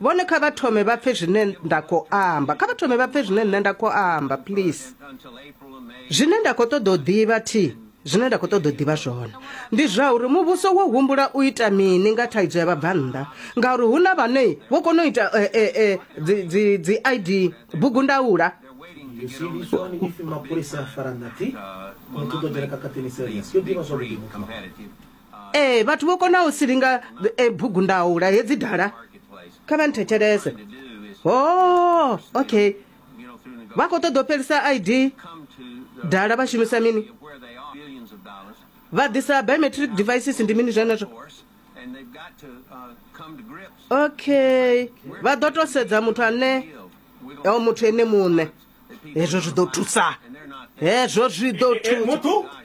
vhone kha vha thome vha pfe zwine nda khou amba kha vha thome vha pfe zwine nṋe nda khou amba please zwine nda khou ṱoḓa u ḓivha thi zwine nda khou ṱoḓa u ḓivha zwone ndi zwa uri muvhuso wo humbula u ita mini nga thaidzo ya vhabvannḓa ngauri hu na vhane vho kona u ita eh, eh, eh, dzi i d bugu ndaula ee vhathu vho konaho silinga e, bugundaula hedzi dala kha vha nthetshelese o oh, okay vha khou ṱoḓa u fhelisa id dala vha shumisa mini vha ḓisa biometric devices ndi mini zwenezwo okay vha ḓo to sedza muthu ane o muthu ene muṋe hezwo zwi ḓo thusa hezwo zwi ḓo thusa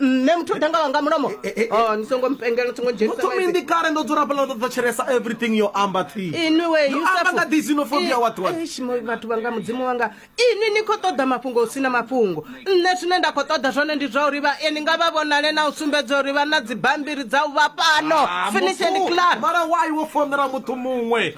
nṋe muthu danga wanga mulomo eh, eh, eh, oh, ni songo mpengela songo dzhenitsaothomindi kale ndo dzula pala ndo thetshelesa everything yo amba thi inwi we yusefuanga disinofobia watwatbathu vanga mudzimu wanga ini ni khou ṱoḓa mafhungo hu sina mafhungo nṋe zwine nda khou ṱoḓa zwone ndi zwa uri vha ni nga vha vhonale na u sumbedza uri vha na dzibambiri dza u vha pano ah, finish and clar mara why wo fonela muthu muṅwe